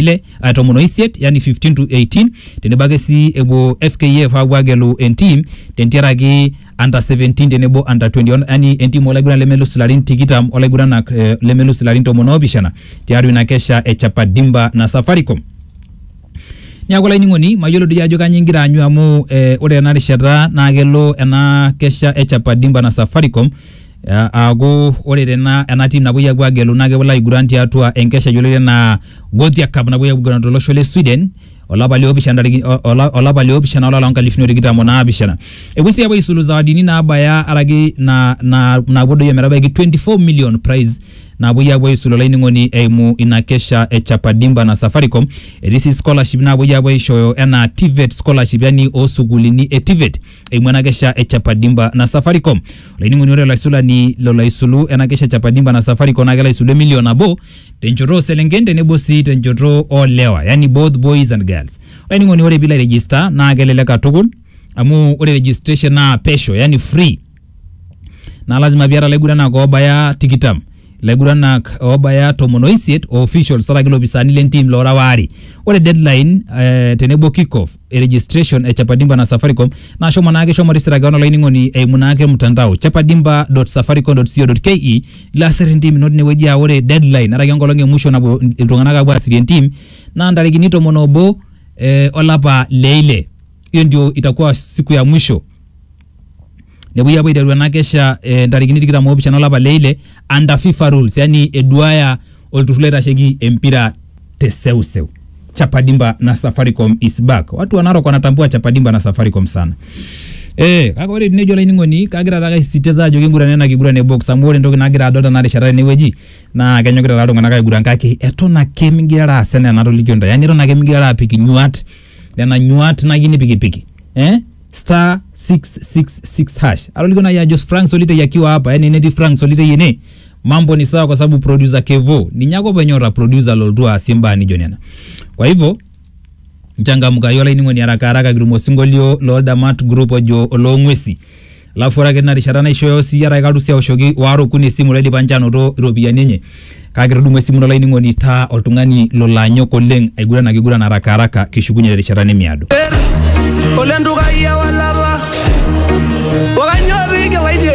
ile uh, tomon oisiet yani 15 to 18 tenebo ake sii epuo FKF aapuo agelu entim tentiaraki under 17 tenebo under 21 yani entim olaiguran lemelus ilarin tikitam olaiguranak eh, lemelus ilarin tomon oopishana tiatua ina kesha e Chapadimba na Safaricom niaku olainining'oni mayiolo doi ajo kanyoo ingira aanyu amu eh, ore ena rishata naa kelo ena kesha e Chapadimba na Safaricom Aaku ore tena ena team napuoi apuo agelu naa kepuo aiguran tiatua enkesha yioloti enaa Gothia Cup napuoi apuo aiguran tolosho le Sweden olapa liopishana ntarikini olapa liopishana olapa loonkalifuni are otikitam onaapishana. Epuoi sii apuo aisulu zawadini naabaya araki naa naa naapuo doi ometabaiki twenty four million prize napuoi apuo aisulu olainining'oni eimu ina kesha e Chapa Dimba na Safaricom. Etii sii scholarship napuoi apuo aishooyo enaa TVET scholarship yani oo sukuulini e TVET. eimu ena kesha e Chapadimba na Safaricom. Olainining'oni ore olaisulani lolo aisulu ena kesha e Chapadimba na Safaricom naa kelo aisulu emilion nabo tenchoto oo selenken tenebo sii tenchoto oo lewa yani both boys and girls. Olainining'oni ore piilo airegister naa kelelek katukul amu ore registration naa pesho yani free naa lazima piata ilaiguranak oobaya tikitam ilaiguranak oobaya tomon oisiet o officials araki ilopisaani lentim loora waare. Ore deadline eh, tenebo kick off e registration e chapadimba na safaricom naa shomo naake shomo register keon olainining'oni eimu naake mtandao chapadimba.safaricom.co.ke ilo asir entim ino tinewueji aa ore deadline araki enkolong e musho napuo iltung'anak apuo aasirie entim naa ntarikini tomon obo eh, olapa le ile hiyo ndio itakuwa siku ya mwisho nepuoi apuo aiteru ena kesha eh, ntarikini tikitam oopishana olapa le ile under FIFA rules yani eduaya olturrur loitasheki empira te seuseu chapadimba na safaricom is back watu wa narok wanatambua chapadimba na safaricom sana Eh, kake ore tenejo olainining'oni kagira taake aisisitiza ajo kingurana ena kiguran e box amu ore entoki nagira adol tena rishata tenewueji naa kenyokita taa iltung'anak aiguran kake eton ake migirara aas enaa enatolikio ntae yani eton ake migirara apik inyuat nena nyuat nayieu nipikipiki eh? star 666 hash aloliko naye ajo frank solitei akiwa hapa yani netii frank solitei ene mambo ni sawa kwa sababu producer kevo ninye ake openy ora producer loltu aasie mbaa nijo nena kwa hivyo nchangamkayu olainining'oni haraka haraka kitum osinkolio loldamat group ojo oloong'uesi alafu ore ake tina rishata naishooyo siyie arake kalusi aoshoki waare okuni esimu laidipa ninche anoto iropiyiani enye Kake etudung'o esimu ino olainining'oni itaa oltung'ani lolo anyok oleng aiguran ake aiguran harakaharaka kishukunye terishata nemiado. Ole ntukai ewalata, o kainyoo pee igila ine?